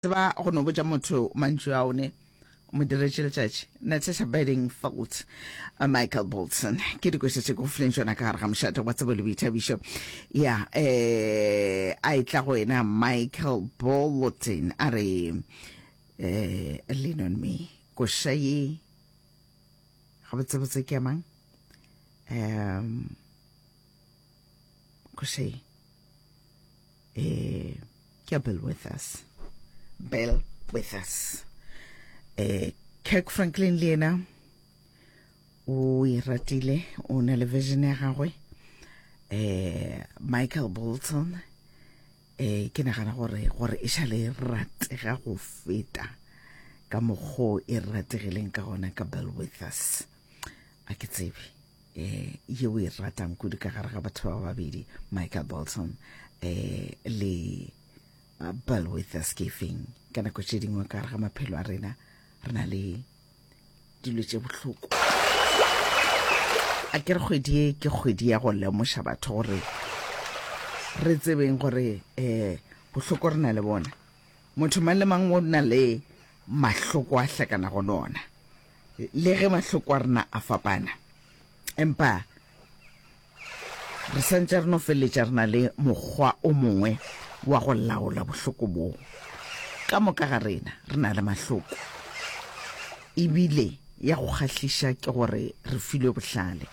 Tseba go no botša motho mantšu ao ne mo diretše letšatši. Natasha Badding Foltz, uh, Michael Bolton. Ke dikweša tše go fileng tšona ka gare ga mošate wa tsebo le boithabišo. Ya, eh, a e tla go wena Michael Bolton a re, eh, lean on me. Koša ye, gabotsebotse ke ya mang? Um, go say eh ke ya bill with us bill with us eh kirk franklin le yena o e ratile o na le vision ya gagwe eh michael bolton eh ke nagana gore gore e šale e ratega go feta ka mokgo e rategileng ka gona ka bill with us a ke tsebe eh, ye o e ratang kudu ka gare ga batho ba babedi michael bolton eh, le uh, bill witherscafing ka nako tše dingwe ka gare ga maphelo a rena re na le dilo tše bohloko a ke re kgwedi e ke kgwedi ya go lemoša batho gore re tsebeng gore um bohloko re na le bona motho mang le mang o na le mahloko a hlakana go lona le ge mahloko a rena a fapana empa re santse re no feleletša re na le mokgwa o mongwe wa go laola bohloko boo ka moka ga rena re na le mahloko ebile ya go kgahliša ke gore re filwe bohlale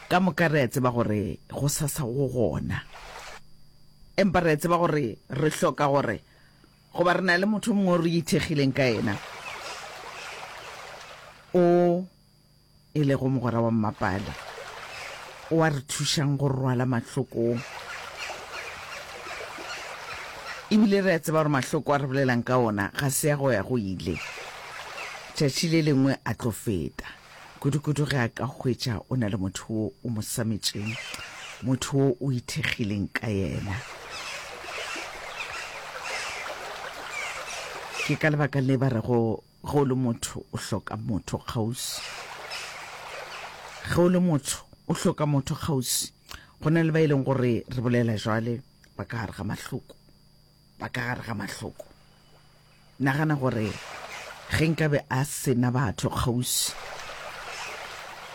ka moka re a tseba gore go sasa go gona empa re a tseba gore re hloka gore Goba re na le motho o mongwe o re ithekgileng ka yena, o e lego mogwera wa mmapale, o a re thušang go rwala mahlokong. Ebile re a tseba gore mahloko a re bolelang ka ona ga se ya go ya go ile, tšatši le lengwe a tlo feta. kudu-kudu ge a ka hwetša o na le motho wo o mo sametšeng motho wo o ithekgileng ka yena ke ka lebaka le ba rego ge o le motho o hloka motho kgausi ge o le motho o hloka motho kgausi go na le ba e leng gore re bolela jwale ba ka gare ga mahloko ba ka gare ga mahloko nagana gore ge nkabe a sena batho kgausi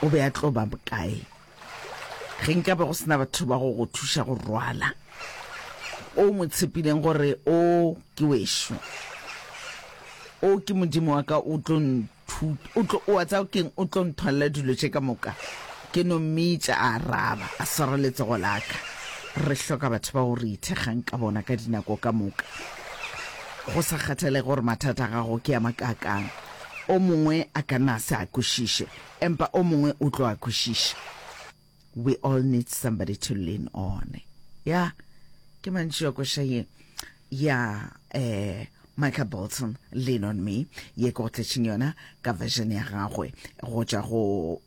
o be a tlo ba bokae ge nkabe go sena batho ba go go thuša go rwala o mo tshepileng gore o ke wešo o ke modimo wa ka o tlo Thuto. O tlo, o a tsaya keng, o tlo nthwalela dilo tše ka moka. Ke no mmitša, a araba, a swara letsogo la ka. Re hloka batho bao re ithekgang ka bona ka dinako ka moka. Go sa kgathalege gore mathata a gago ke a makaakang, o mongwe a ka na a se a kwešiše, empa o mongwe o tlo a kwešiša. We all need somebody to lean on. Ya, ke mantši a koša ye. Ya, eh, Michael Bolton, Lean on Me, ye ke go tletšeng yona ka version ya gagwe go tšwa go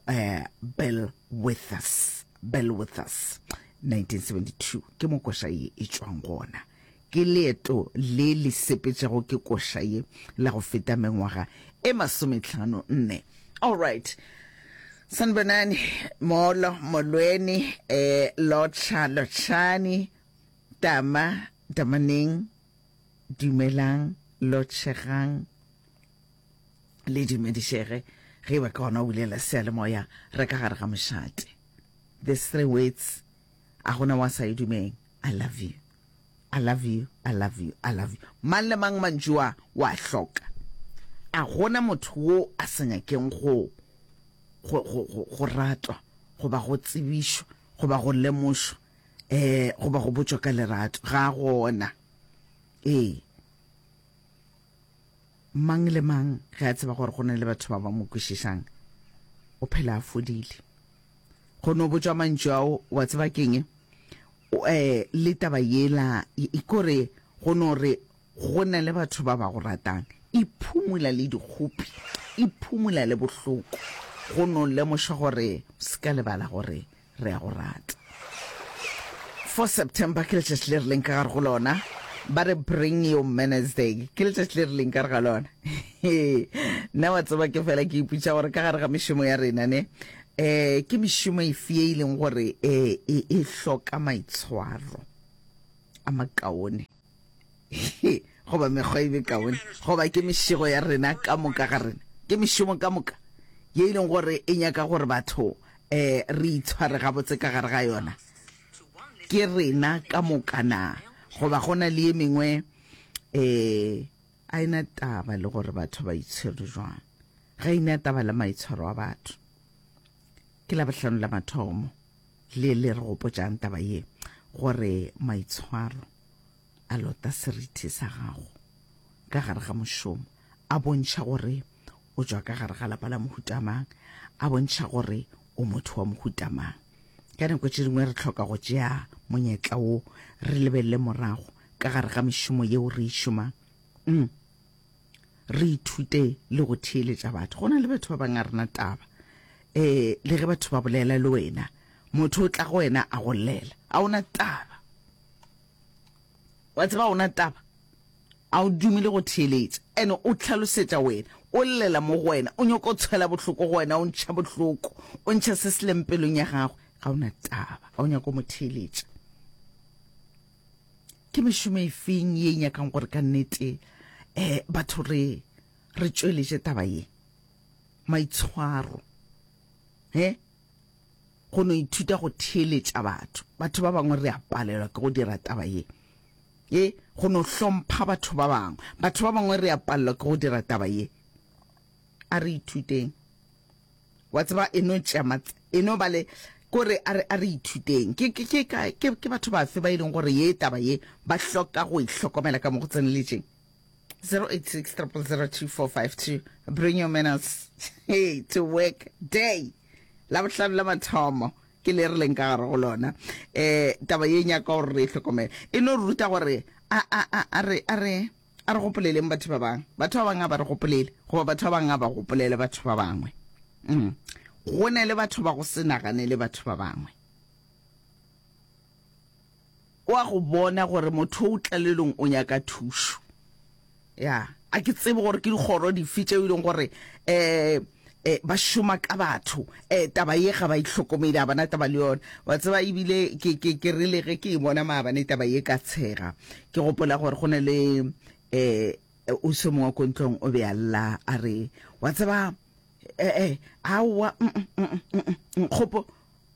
eh, Bill Withers. Bill Withers, 1972. Ke mo koša ye e tšwang gona. Ke leeto le le sepetšago ke koša ye la go feta mengwaga e masometlhano nne. Alright. Sanibonani, Molo, Molweni, eh, Lotsha, Lotshani, Tama, Tamaneng, Dumelang, Lotshegang, le dumedišege ge ba ka gona o bulela seyalemoya re ka gare ga mošate. These three words a gona wa sa e dumeng. I love you. I love you, I love you, I love you. Mang le mang mantšu a o a hloka. A gona motho wo a sa nyakeng go go go go go ratwa goba go tsebišwa goba go lemošwa eh goba go botšwa ka lerato ga gona ee Mang le mang ge a tseba gore go na le batho ba ba mo kwešišang, o phela a fodile. Go no botšwa mantšu ao, wa tseba keng? Um le taba yela ikore go no re go na le batho ba ba go ratang, iphumula le dikgopi, iphumula le bohloko, go no lemoša gore o se ka lebala gore re a go rata. 4 September ke letšatši le re leng ka gare go lona ba re bring your manners day ke letšatši le re leng ka re ga lona nna wa tseba ke fela ke iputša gore ka gare ga mešomo ya rena ne um ke mešomo efe e e leng gore um e hloka maitshwaro a makaone he goba mekgwa e mekaone goba ke mešego ya rena ka moka ga rena ke mešomo ka moka ye e leng gore e nyaka gore batho um re itshware gabotse ka gare ga yona ke rena ka moka na goba go na le ye mengwe um a ena taba le gore batho ba itshwere jwang ga ena taba le maitshwaro a batho ke labohlano la mathomo Le le re gopotšang taba ye, gore maitshwaro a lota seriti sa gago ka gare ga mošomo a bontšha gore o tšwa ka gare ga lapa la mohuta mang, a bontšha gore o motho wa mohuta mang. Ka nako tše dingwe re hloka go tšea monyetla wo re lebelele morago ka gare ga mešomo yeo re e šomang. re ithute le go theeletša batho go na le batho ba bangwe a rena taba um le ge batho ba bolela le wena motho o tla go wena a go llela a ona taba wa tseba ona taba a o dumile go theeletša and o tlhalosetša wena o llela mo go wena o nyoko o tshwela bohloko go wena o ntšha bohloko o ntšha se se leng pelong ya gagwe ga ona taba a o nyako mo theeletša ke mešomo e feng ye e nyakang gore ka nnete um batho re re tšweletše taba ye maitshwaro he go no ithuta go theeletša batho batho ba bangwe re a palelwa ke go dira taba ye e go no hlompha batho ba bangwe batho ba bangwe re a palelwa ke go dira taba ye a re ithuteng wa tseba e no tšea mat e no ba le kore a re a re ithuteng ke ke ke ka ke ke batho ba fe ba ileng e gore ye taba ye ba hloka go ihlokomela e ka mo go tseneletseng 0860002452 bring your manners hey to work day la bohlano la mathomo ke le re leng ka gare go lona eh taba ye nyaka gore re itlhokomele e no ruta gore a a a re a re A re gopoleleng batho ba bangwe. Batho ba bangwe a ba re gopolele, goba batho ba bangwe a ba gopolele batho ba bangwe. Mm. Go ne le batho ba go se naganele batho ba bangwe. O a go bona gore motho o tlalelong o nyaka thušo. Ya, a ke tsebe gore ke dikgoro dife tšeo e leng gore um eh, ba šoma ka batho eh, taba ye ga ba itlhokomele a bona taba le yona wa tseba ebile ke, ke, ke rile ge ke e bona maabane taba ye ka tshega ke gopola gore go ne le um eh, o se mongwe ko ntlong o be a lla a re wa tseba eh, eh, aowa mm, mm, mm, mm, mm, mm, kgopo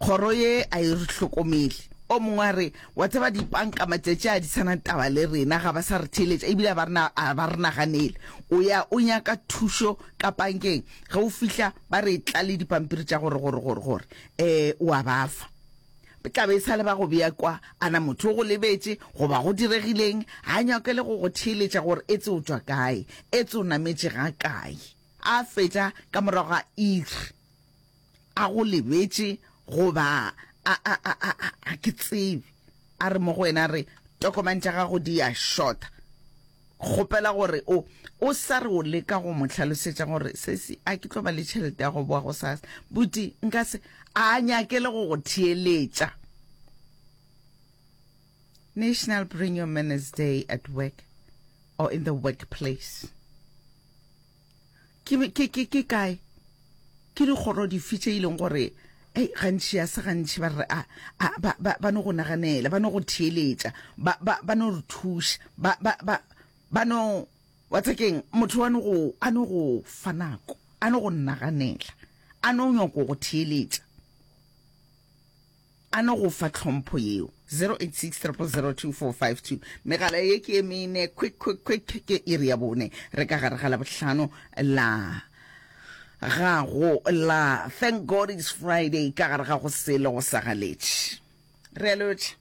Kgoro ye a e re hlokomele. O mongwe a re, Wa tseba, dipanka matšatši a di sa na taba le rena, ga ba sa re theeletša ebile a ba re naganele. O ya o nyaka thušo ka pankeng, ge o fihla ba re tla le dipampiri tša gore gore gore gore um o a ba fa. Tla be e sa le ba go bea kwa. A na motho o go lebetše goba go diregileng? Ga a nyake le go go theeletša gore etse o tšwa kae, etse o nametše ga kae. A fetša ka morago ga iri. A go lebetše goba a, a, a, a, a, a ke tsebe. A re mo go wena, a re, Tokomane tša gago di a šota. Kgopela gore o, o sa re o leka go mo hlalosetša gore, Sesi, a ke tlo ba le tšhelete ya go boa gosasa? Buti, nka se. A a nyake le go go theeletša. National Bring Your Manners Day at Work or in the Workplace. Ke, ke, ke, ke kae? Ke dikgoro dife tše e leng gore, ei, gantši ya se gantši ba re, a, a, ba, ba, ba no go naganela, ba no go theeletša, ba, ba, ba no re thuša, ba, ba, ba, ba no, wa tsakeng, motho wa no go, a no go fa nako, a no go naganela, a no nyoko go theeletša. A no go fa tlhompho yeo. 0860002452 Megala ye ke ye mene, quick, quick, quick, ke iri ya bone. Re ka gare ga Labohlano la ga go la Thank God it's Friday ka gare ga go sele go sa galetše. Re a lotšha.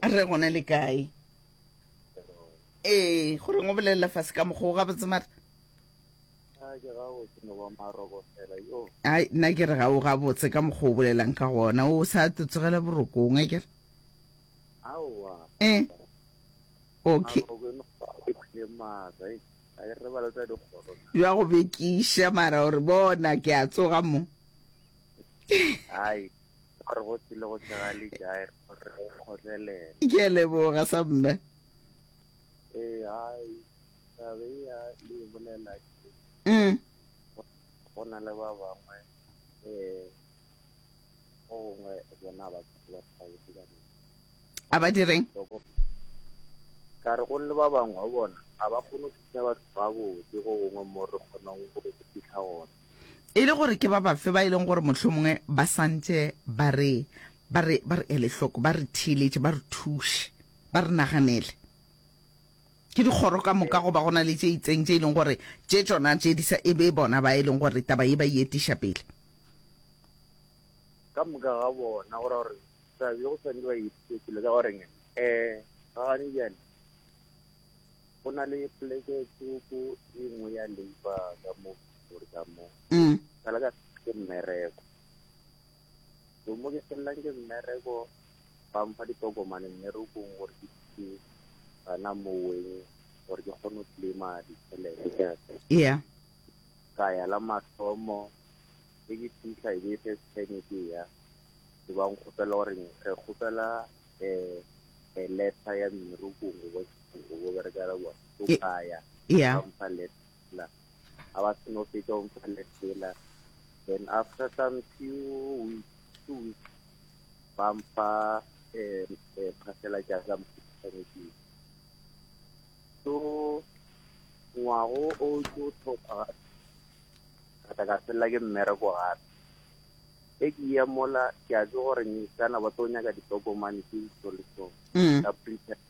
Re gona le kae? Ee, go reng o bolelela fase ka mokgwa o gabotse mara? Aa ke gabotse no ba maroko fela yo. Ai nna ke re ga o gabotse ka mokgwa o bolelang ka gona o sa te tsogela borokong a ke re. Aowa. Eh. Okay. Maroko e no e phile maatla e a e re ba leta dikgoro. Jwa go bekiša mara o re bona ke a tsoga mo. Ai gore go tsile go tshega le jae gore go kgotlelela. Ke a leboga sa mme. Eh ai Mm. go na le ba bangwe um go gongwe bona ba ba thabetse ka nna a ba direng ka re go le ba bangwe bona ga ba kgone go thusa batho ba botse go gongwe mo re kgonang go fitlha gona e le gore ke ba bafe ba e leng gore motlho mongwe ba santse ba re ba re ba re ele hloko ba re theeletše ba re thuše ba re naganele Ke dikgoro ka moka goba go na le tše itseng tše e leng gore tše tšona tše di sa e be bona ba e leng gore taba ye ba e etiša pele? Ka moka ga bona go ra gore taba ye go swanele ba e etiše pele ka goreng um ga gane bjale go na le poleke tsoko e nngwe ya labour ka mo gore ka mo ka la ka ke mmereko Go mo ke felelang ke mmereko, ba mpha ditokomane mmerekong gore ke ke gana moweng gore ke kgone go tlema ditšhelete. Yeah. Ka ya la mathomo, e ke fitlha e be first time ke ya, ke ba nkgopela gore re kgopela um a letter ya mmerekong o bo berekela bona. So ka ya, ba mpha letter. a ba se no fetša o mpha lesela then after some few weeks two weeks ba mpha um phasela ja ka motshwanetseng so ngwago o ke o tlhopha ka tla ka felela ke mmereko gape e ke ya mola ke a tse gore ngisana ba tlo nyaka ditokomane tse ditso le tsone mm. ka printers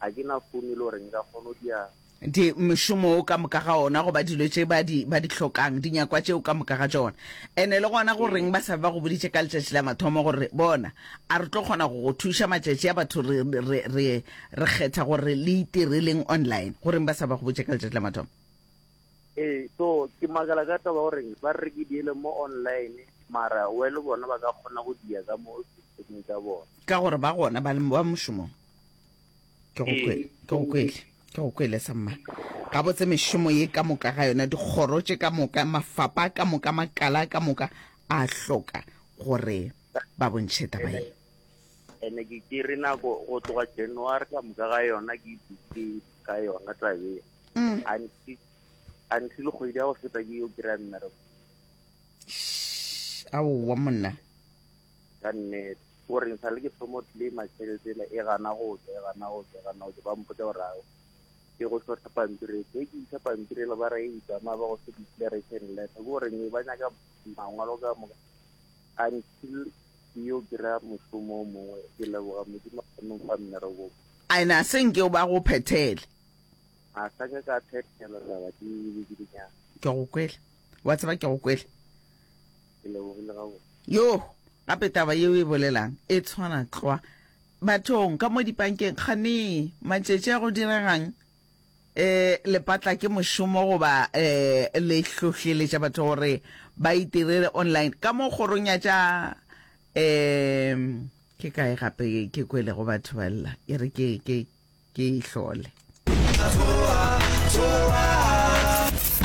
Ga ke na founo e le gore nka kgona go dia. Di, mošomo o ka moka ga ona, goba dilo tše ba di, ba di hlokang, dinyakwa tšeo ka moka ga tšona. Ene le gona go reng ba sa be ba go boditše ka letšatši la mathomo gore, Bona, a re tlo kgona go go thuša matšatši a batho re, re, re, re kgetha gore le itireleng online? Go reng ba sa ba go botše ka letšatši la mathomo? Ee, so ke makala ka taba gore ba re ke diele mo online, mara we le bona ba ka kgona go dia ka mo systemeng tša bona. Ka gore ba gona ba le ba mošomong. ke go kwele ke go kwele ke go kwele sa mma ga botse mešomo ye ka moka ga yona dikgoro tše ka moka mafapa ka moka makala ka moka a hloka gore ba bontšhe taba ye ene ke ke re nako go tloga january ka moka ga yona ke dutse ka yona tabe mm. until kgwedi ya go feta ke yo kry-a mmereko aowa monna ka nnete o reng sa le ke thomo tlema tšheletele e gana go tswa e gana go tswa e gana go tswa ba mpotsa gore ao ke go tlotla pampiri e ke isa pampiri le ba re e tsamaya ba go se declaration letter ke gore ne ba nyaka mangwalo ka moka until yo kry-a mošomo o mongwe ke leboga modimo a kgone go fa mmereko ene a seng ke ba go phethele a sa ke ka phethela taba ke dinyana ke go kwele wa tseba ke go kwele Ke lebogile gabotse. Yo, gape taba yeo e bolelang e tshwana tlwa bathong ka mo dipankeng. Kganee, matšetši a go diregang? E, lepatla ke mošomo goba e, le hlohleletša batho gore ba itirele online ka mo kgorong ya tša e, ke kae gape ke kwelego batho ba lla e re ke, ke, ke e hlole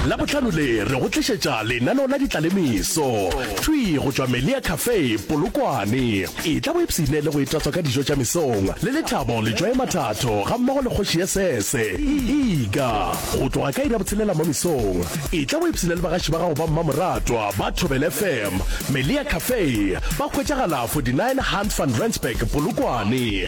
la botlhano le re go tlišetša lenaneo la ditlalemeso thwi go tšwa melia cafe polokwane e tla bo epsene le go etatswa ka dijo tša mesong le lethabo letšwae mathatho ga mmogo le kgoši ya sese ega go tloga ka ira botshelela mo mesong e tla bo epsene le bagaši ba gago ba mmamoratwa ba thobel fm melia cafe ba hwetšagala 49 hunt van rensburg polokwane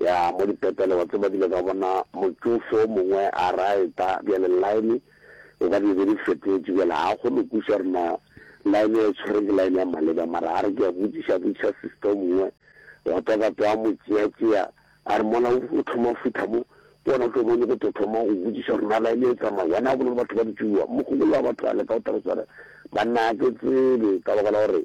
Ya mo dipetele wa tseba ke ile ka bona motšofe o mongwe a raeta bjale line e ka di be di fetotše bjale ga kgone go kwiša gore na line ya e tshwere ke line ya maleba mara a re ke a botšiša botšiša sister o mongwe wa tswa ka tswa mo tšea tšea a re mona o thoma fitlha mo ke ona o tlo bone go tlo thoma go botšiša gore na line e tsamaya wena a bone le batho ba ditšuwa mogogolo wa batho a leka o tla go swara banna a ke tsebe ka baka la gore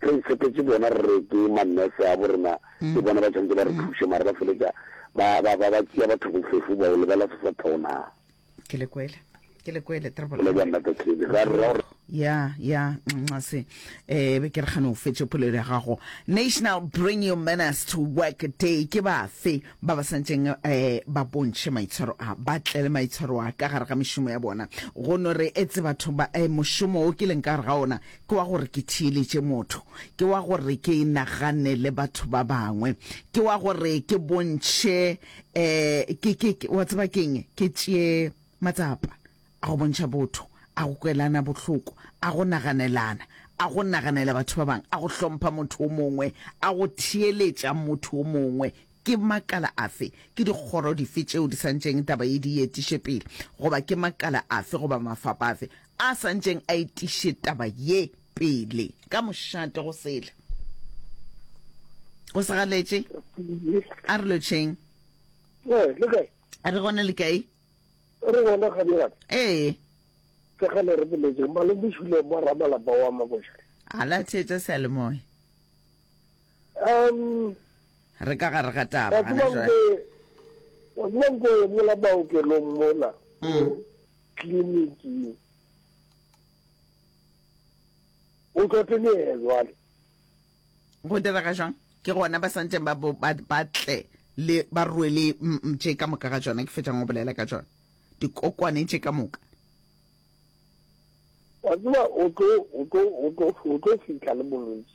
Re itshepetše bona re re ke ma nurse a bo rena ke bona ba tshwanetse ba re thuše mara ba feletša ba ba ba ba tšea batho bofefo ba o lebela se sa thona. Ke le kwele. Ke le kwele Ke le bona the case. Ra ra ra. ya ya nxase eh be ke re gane o fetše polelo ya gago national bring your manners to work day ke bafe ba ba santseng eh ba bontšhe maitshwaro a ba tle le maitshwaro a ka gare ga mešomo ya bona go no re etse batho ba eh mošomo o ke leng ka gare ga ona Ke wa gore ke theeletše motho. Ke wa gore ke nagane le batho ba bangwe. Ke wa gore ke bontšhe, um ke, ke, ke, wa tseba ke eng, ke tšee matsapa a go bontšha botho, a go kwelana bohloko, a go naganelana, a go naganela batho ba bangwe, a go hlompha motho o mongwe, a go theeletša motho o mongwe. Ke makala afe, ke dikgoro dife tšeo di santšeng taba ye di e etiše pele, goba ke makala afe goba mafapa afe a santšeng a etiše taba ye pele? Ka mošate go sele. Go se galetše. A re lotšheng. Ee, le kae? A re gona le kae? Re gona ga bjale. Ee. Ke ga le re boletse, Malome Šule mo ramalapa wa Mabošare. A la theetša seyalemoya. Um, Re ka gare ga taba wa gana tseba jwale. nke, wa tseba nke mola baokelong mola, Mm. kliniking. O tlo tlelee jwale. Go direga jwang? Ke gona ba santseng ba bo- ba ba tle le ba rwele mm, mm, tše ka moka ga tšona ke fetšang go bolela ka tšona. Dikokwane tše ka moka. Wa tseba o tlo, o tlo, o tlo, o tlo fihla le bolwetši.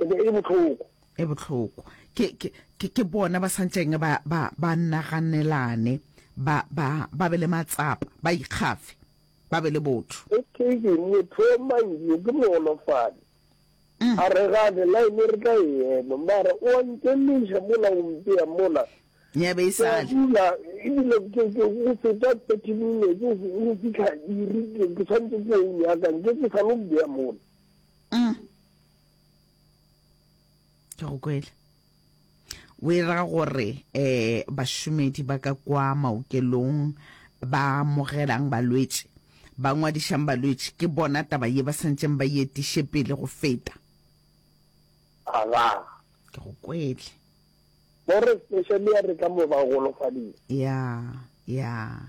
e be e le bohloko e bohloko ke ke ke ke bona ba santseng ba ba ba naganelane ba ba ba be le matsapa ba ikgafe ba be le botho okay ke motho o manje ke moolofadi mm. a re ga de line re tla ema mara o nkeleša mola o mpea mola ya be e sale dula ebile ke ke go feta 30 minutes go fitlha iri ke tshwanetse ke o nyaka nke ke sa lo bea mola mm. ke go kwele o e ra gore eh bašomedi ba ka kwa maokelong ba amogelang balwetši ba ngwadišang balwetši ke bona taba ye ba santšeng ba yetiše pele go feta ke go kwele Bo re special ya re ka mo ba golofadile. Ya, ya.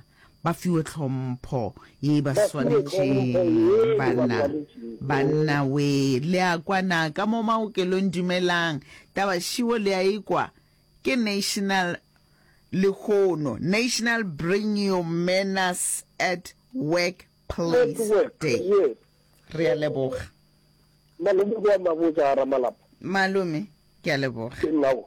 Ba fiwe tlhompho ye e ba Ba fiwe tlhompho swanetšeng ye e ba banna. swanetšeng. Banna we, le a kwa na ka mo maokelong dumelang. Taba šiwo le a e kwa. Ke national lehono. National bring your manners at work Please Day. Re a leboga. Malome go a mabotsa ga Ramalapa. Malome ke a leboga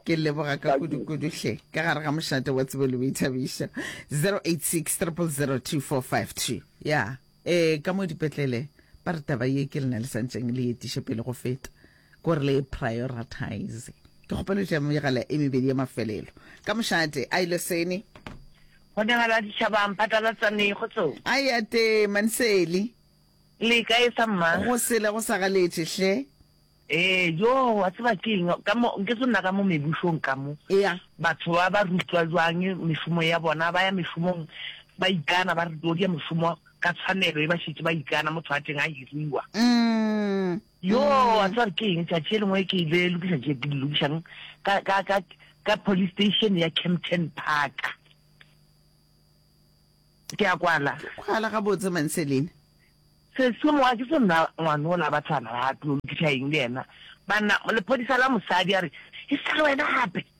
ke leboga ka kudu-kudu hle ka gare ga mošate wa tsebo le boithabišo 086 002452 ya ee ka mo dipetlele ba re taba ye ke lena le santšeng le etiše pele go feta Go re le e prioritize. Ke kgopelo tša megala e mebedi ya mafelelo. Ka mošate, a ile sene. Go dingala ditšhabang, phatalatsaneng, kgotsong. A ya tee, Manseli. Le kae sa mma? Go sele go sa galetše, hle. Ee, joo, wa tseba ke eng? Ka mo, nke se nna ka mo mebušong ka mo. Ea. Batho ba ba rutwa jwang mešomo ya bona, ba ya mešomong ba ikana, ba rutwa go dia mešomo ka tshwanelo e ba šetše ba ikana, motho a teng a hiriwa. Umm. Yoo, a tseba ke eng, tšatši e lengwe ke ile lokiša tše ke di lokišang ka, ka, ka, ka police station ya Kempton Park. Ke a kwala. Ke kwala gabotse Manselene. Seswe mowa ke se nna ngwane o la batsana ba tlo lokiša eng le yena. Banna, lephodisa la mosadi a re, E sa le wena gape?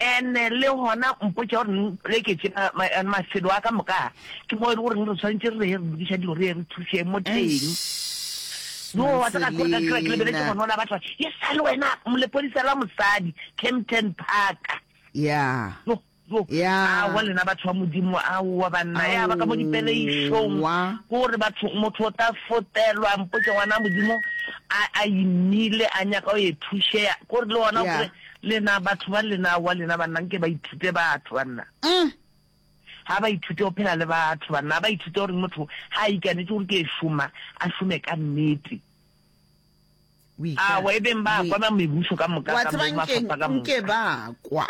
And le gona mpotša gore ne mpoleketše mafelo a ka moka ke mo e le goreng re tshwanetse re re re lokiša dilo re ye re thuseng mo teng yo wa tsaka gore ka kira ke lebeletse gona o la batla e sa le wena molepodisa la mosadi Kempton Park ya yo yo ya a wa lena batho ba modimo a wa banna ya ba ka mo dipeleišong gore batho motho o tla fotelwa mpotše ngwana modimo a a imile a nyaka o ye thušea gore le gona gore Lena batho ba lena wa lena banna nke ba ithute batho banna ha ba ithute go phela le batho banna ha ba ithute gore motho ha a ikanetse gore ke e šoma a šome ka nnete awa e beng ba kwa ba mebuso ka moka ka mo mafapha ka moka ba kwa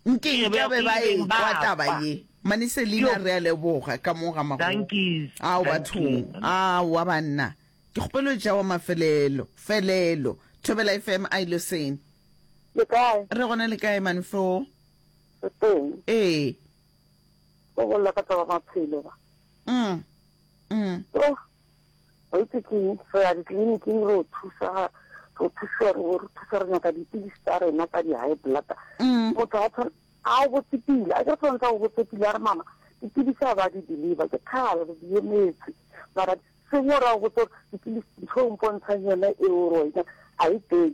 nke ba be ba e kwa taba ye mane selina re a leboga ka mo ga mago ao bathong awa banna ke kgopelo jawa mafelelo felelo thobela fm a iloseng Le kae? Re gona le kae man flo? Re teng. Ee. Go bolela ka taba maphelo ba. Mm. Mm. Oh. Wa itse ke re ya ditleliniking re o thusa re thusa re re thusa re nyaka dipilisi tsa rena tsa di-high blood mm. motho a tshwana a o botsepile a ke tshwanetse a o botsepile a re mama dipilisi a ba di deliver ke kgale re di emetse mara sengwe ra go botsa gore dipilisi ntho o mpontshang yone eo rona a e teng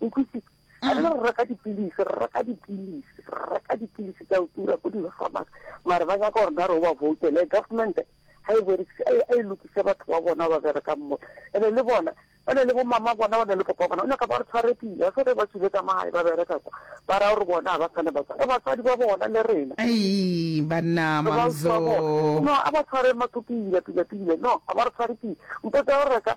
utlwisitse a re re reka dipilisi re reka dipilisi re reka dipilisi tsa o tura ko di-farmacy mare ba nyaka gore na re o ba voutele government ga e berekise a e lokise batho ba bona ba berekang mo ene le bona ba ne le bomama bona ba ne le papa bona o nyaka ba re tshware pila se re ba tswile ka magae ba bereka kwa ba raya gore bona ga ba tshwane batswadi batswadi ba bona le rena ei banna mamzo no a ba tshware matho pila pila pila no a ba re tshware pila mpo tsa go reka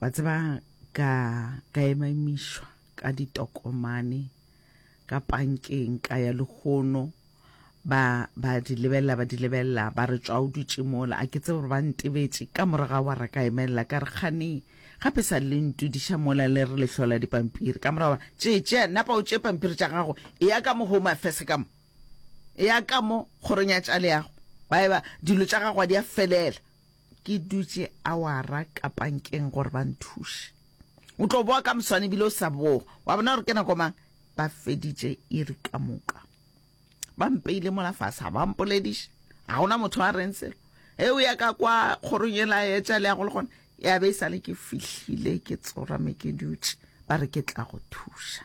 wa tseba ka ka emamišwa ka ditokomane ka pankeng ka ya lehono ba ba di lebelela ba di lebelela ba re tswa o dutše mola a ke tse gore ba ntebetše ka moraga wa re ka emelela ka re kgane gape sa le ntudiša mola le re lehlola dipampiri ka morago tše tše napa o tše pampiri tša gago e ya ka mo home affairs ka mo e ya ka mo kgorong ya tša leago ba eba dilo tša gago di a felela Ke dutše awara ka pankeng gore ba nthuše. O tlo boa ka moswane ebile o sa boa. Wa bona gore ke nako mang? Ba feditše iri ka moka. Ba mpeile mola fase, ga ba mpolediše. Ga gona motho a reng selo. Ge o ya ka kwa kgorong e la etša le ya go le gona, ya be e sale ke fihlile ke tsorame ke dutše, ba re ke tla go thuša.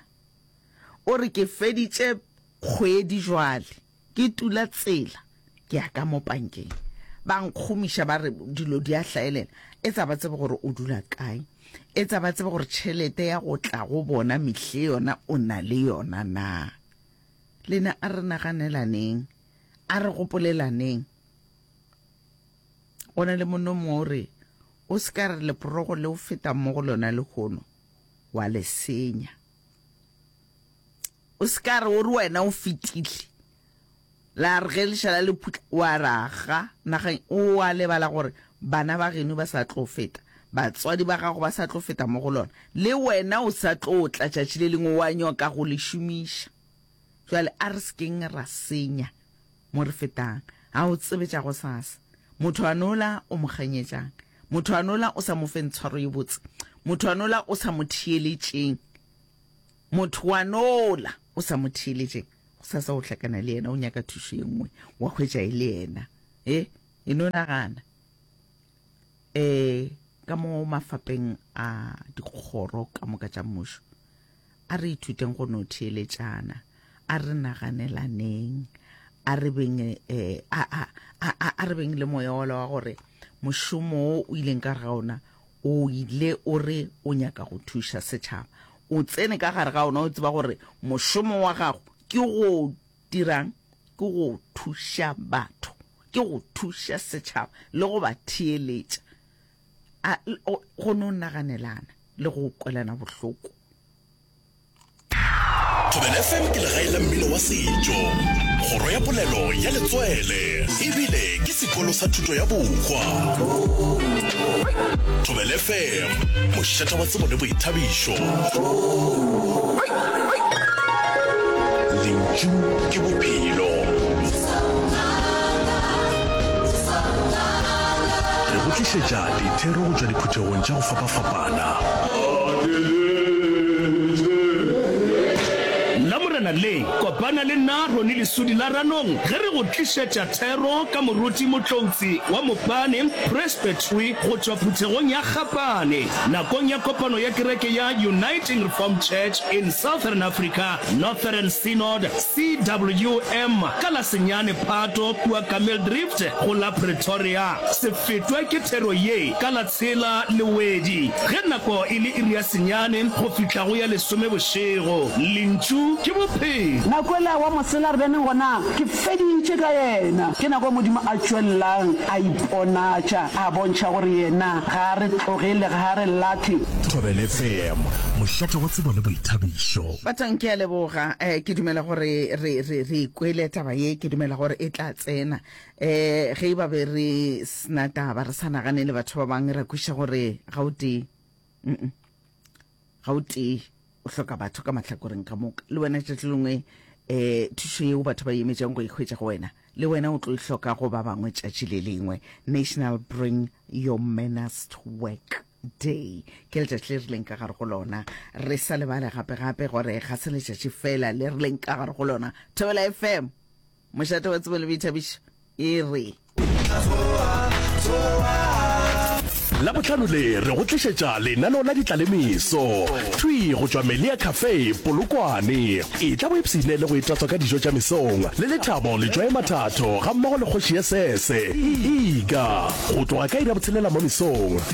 O re ke feditše kgwedi jwale. Ke tula tsela ke ya ka mo pankeng, ba nkgomiša ba re dilo di a hlaelela, etsa ba tsebe gore o dula kae, etsa ba tsebe gore tšhelete ya go tla go bona mihle yona o na le yona na. Lena a re naganelaneng, a re gopolelaneng. Go na le monna o mongwe o re, O se ka re leporogo le o fetang mo go lona lehono wa le senya. o se ka re o re wena o fetile la re ge lešala le phutla wa raga nageng o a lebala gore bana ba geno ba sa tlo feta batswadi ba gago ba sa tlo feta mo go lona le wena o sa tlo tla tšatši le lengwe wa nyoka go le šomiša jale a re sekeng ra senya Mo re fetang, ga o tsebe tša gosasa. Motho a nola o mo kganyetšang? Motho a nola o sa mo feng tshwaro ye botse? Motho a nola o sa mo theeletšeng? Motho wa nola o sa mo theeletšeng? Gosasa o hlakana le yena, o nyaka thušo ye nngwe, wa hwetša e le yena. E, e no nagana. E, ka mo mafapeng a dikgoro ka moka tša mmušo. A re ithuteng go no theeletšana, a re naganelaneng, a re beng eh, a, a, a, a, a re beng le moya ola wa gore mošomo o o ileng ka ga ona o ile o re o nyaka go thuša setšhaba o tsene ka gare ga ona o tseba gore mošomo wa gago ke go dirang ke go thuša batho ke go thuša setšhaba le go ba theeletša a go no naganelana le go kwelana bohloko Thobela FM ke legae la mmino wa setšo kgoro ya polelo ya letswele ebile ke sekolo sa thuto ya bokgwa Thobela FM mošata wa tsebo le boithabišo lentšu ke bophelo Re go tlišetša dithero go tšwa diphuthegong tša go fapafapana. Lamorena le, kopana le nna Roni Lesudi la Ranong ge re go tlišetša thero ka moruti Motloutsi wa Mopane Presbytery go tšwa phuthegong ya Gapane nakong ya kopano ya kereke ya Uniting Reformed Church in Southern Africa, Northern Synod, CWM, ka la senyane Phato kua Ka Mildrift, Go la Pretoria, se fetwe ke thero ye ka la tshela le wedi, ge nako e le iri ya senyane go fihla go ya lesome bošego. Lentšu ke Bophelo. Na kwela wa mosela re beneng gona? Ke feditše ka yena. Ke nako Modimo a tšwelelang a iponatša, a bontšha gore Yena ga a re tlogele, ga a re lahle. Thobela FM, mošate wa tsebo le boithabišo. Batlang ke a leboga. Eh, ke dumela gore re, re, re e kwele taba ye. Ke dumela gore e tla. tsena eh ge e ba be re sna taba re sa nagane le batho ba bangwe ra kwiša gore ga o tee ga o tee o hloka batho ka mahlakoreng ka moka le wena tšatši lengwe um thušo yeo batho ba emetšang go ikgwetša go wena le wena o tlo e hloka go ba bangwe tšatši le lengwe national bring your manast work day ke letšatši le rileng ka gare go lona re sa lebale gape gape gore ga se letšatši fela le rileng ka gare go lona thobela fm Mošate wa tsebo le boithabišo e re. La botlhano le re go tlišetša lenaneo la ditlalemiso thwi go tšwa melia cafe polokwane e tla boipsine le go itatswa ka dijo tša mesong le lethabo letšwae mathatho ga mmogo le kgoši ya sese ega go tloga ka ira botshelela mo mesong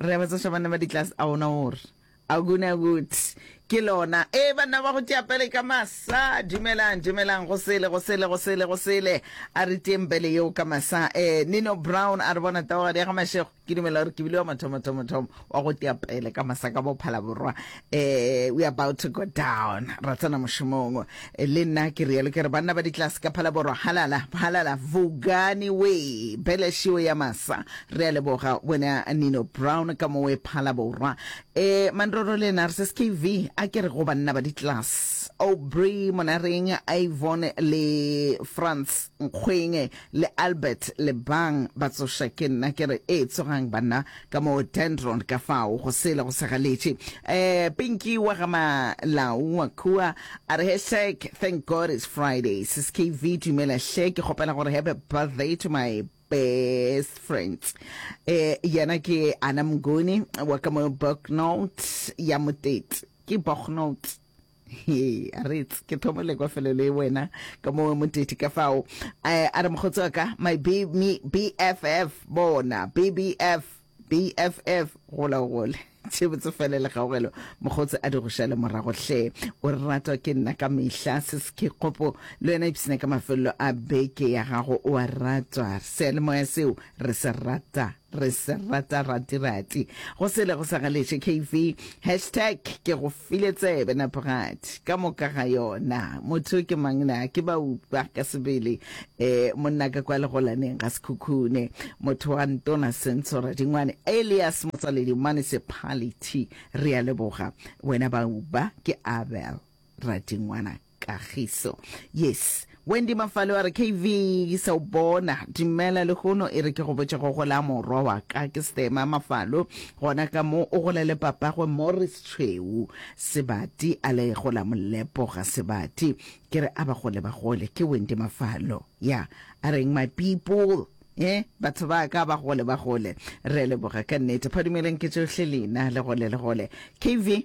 re ba tsoša bana ba ditlase a ona o re aguna good ke lona e banna ba go tšapele ka masa dumelang dumelang go sele go sele go sele go sele a re teng bele yeo ka masa eh nino brown a re bona taogadi ya ga mashego ke dumela gore ke bile wa mathomathomathomo wa go teapele ka masa ka bophalaborwa eh we about to go down ra tsena mošomong eh, le nna ke rialo ke re banna ba ditlase ka phalaborwa halala halala vugani we bele shio ya masa re a leboga wena nino brown ka mo we phalaborwa eh mandroro le narses kv a ke re go banna ba ditlase aubrey monareng ivon le france nkgweng Le Albert le bang ba tsoša ke nna ke re, Ee, tsogang banna, ka moo Dendron ka fao go sele go segaletše. Eh, Pinky wa ga Malau wa kua, a re, Hashtag thank God it's Friday. Sis KV, Dumela hle, ke kgopela gore happy birthday to my best friends. Eh, yena ke Ana Mnguni wa ka mo Bognout ya Motete. Ke Bognout. Hey, a re it's ke thomo le kwa felo le wena ka mo mo tete ka fao eh, a re mogotsi wa ka my B, me, bff bona bbf bff gola o gole tše botse fele le gaogelo mogotsi a di go šale morago hle o re ratwa ke nna ka mehla se se ke kgopo le wena ipsene ka mafelelo a beke ya gago o a ratwa seyalemoya seo re se rata Re se rata rati rati. Go sele go sa galetše KV. Hashtag ke go file tsebe Naporat. Ka moka ga yona. Motho ke mang na? Ke ba upa ka sebele. E, monna ka kwa legolaneng ga sekhukhune. Motho wa ntona Senso Radingwane. Elias Motsaledi Municipality. Re a leboga. Wena ba upa ke Abel Radingwana. Kagiso. Yes. Wendy Mafalo a re KV sa o bona. Dumela le gono e re ke go botše go gola morwa wa ka ke Stema Mafalo gona ka mo o gola le papagwe Morris Tshweu Sebati a le gola molepo ga Sebati ke re a ba gole ba gole ke Wendy Mafalo ya a reng my people e batho ba ka ba gole ba gole re leboga ka nnete phadumeleng ke tšohle lena le gole le gole KV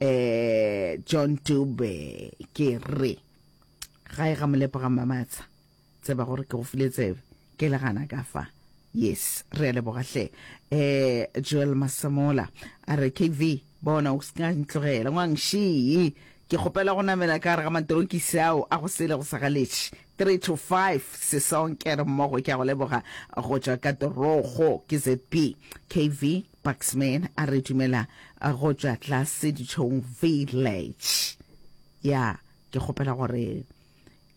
eh John Dube ke re ga e ga molepo ga mamatsa tseba gore ke go file tsebe ke le gana ka fa yes re a leboga hle eh Joel Masemola a re KV bona o ska ntlogela ngwang shi ke kgopela go namela ka re ga matorokisi ao a go sele go sagaletše 3 to 5 sesonke re mmogo ke a go leboga go tšwa ka torogo ke zp KV Baxman a re dumela go tšwa tlase ditšhong village. Ya, ke kgopela gore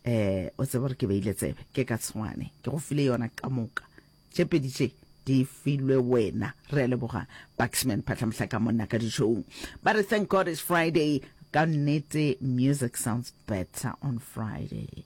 um o tsebe gore ke beile tsebe, ke ka tshwane ke go file yona ka moka. Tše pedi tše di filwe wena. Re a leboga Baxman Phatlhamohlaka monna ka ditšhong. Ba re thank God it's Friday, ka nnete music sounds better on Friday.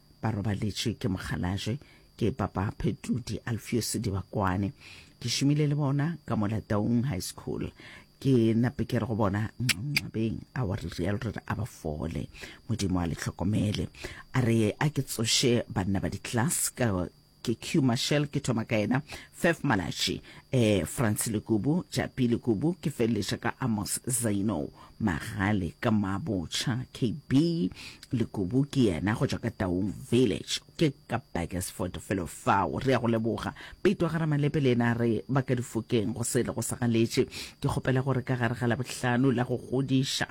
ba robaletše ke mokgalajwe ke papa phetudi alfiose dibakwane ke šomile le bona ka mola taung high school ke nape ke re go bona nxabeng a wa re real re re a ba fole modimo a le tlhokomele a re a ke tsoše banna ba di-class ka ke Q Mashel ke thoma ka yena, Fef Malatši, eh, Francis Lekubu, Japi Lekubu, ke feleletša ka Amos Zaino Magale ka Mabotšha, KB Lekubu ke yena go tšwa ka Taung Village, ke ka Burgersford felo fao. Re ya go leboga Peto ga Ramalepe le yena re ba ka difokeng go se le go sagaletše. Ke kgopela gore ka gare ga Labohlano la go godiša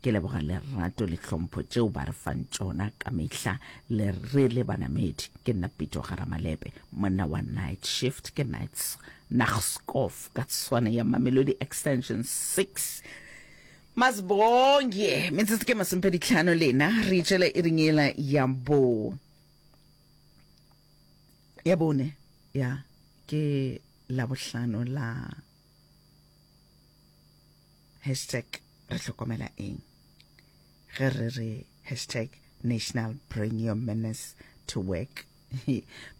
Ke leboga lerato le tlhompho tšeo ba re fang tšona ka mehla le re le banamedi. Ke nna Pito Garamalepe, monna wa Night Shift ke Nights Naxkof ka tswana ya Mamelodi Extension 6. Masibonge, metsotso ke masomepedi tlhano lena re itšela iring ela ya bo ya bone ya ke labohlano la Hashtag Re hlokomela eng ge re re hashtag national bring your manners to work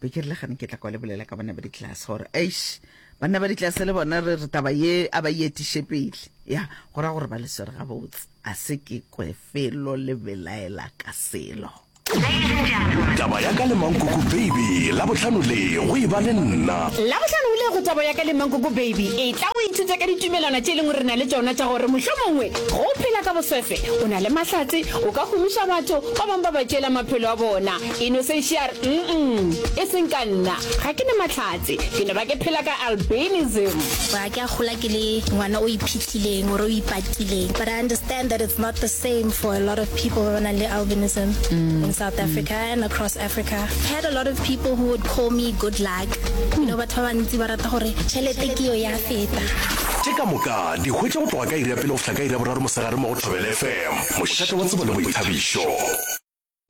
be ke re le gane ke tla kwa le bolela ka bana ba ditlase gore eish banna ba ditlase le bona re re taba ye a ba e etiše pele ya go ra gore ba le swere gabotse a se ke kwe felo le belaela ka selo taba ya ka le mankoko baby labohlano le go e ba le nna labohlano o le go taba ya ka le mankoko baby e tla o ithuta ka ditumelwana tše e leng gore na le tsona tša gore mohlho mongwe go phela ka boswefe o na le mahlatse o ka gomiša batho ba bangwe ba ba tšela maphelo a bona e no se shar mm e seng ka nna ga ke ne mahlatse ke no ba ke phela ka albinism Ke a gola ke le ngwana o iphihlileng or o ipatileng but I understand that it's not the same for a lot of people ba ba nang le albinism mm. in South Africa mm. and across Africa. I had a lot of people who would call me good luck. Mm. You know batho ba bantsi ba rata gore tšhelete ke yo ya feta. Ke ka moka di hwetša go tloga ka iri ya pele go fihla ka iri ya boraro mosegare mo go Thobela FM, mošate wa tsebo le boithabišo.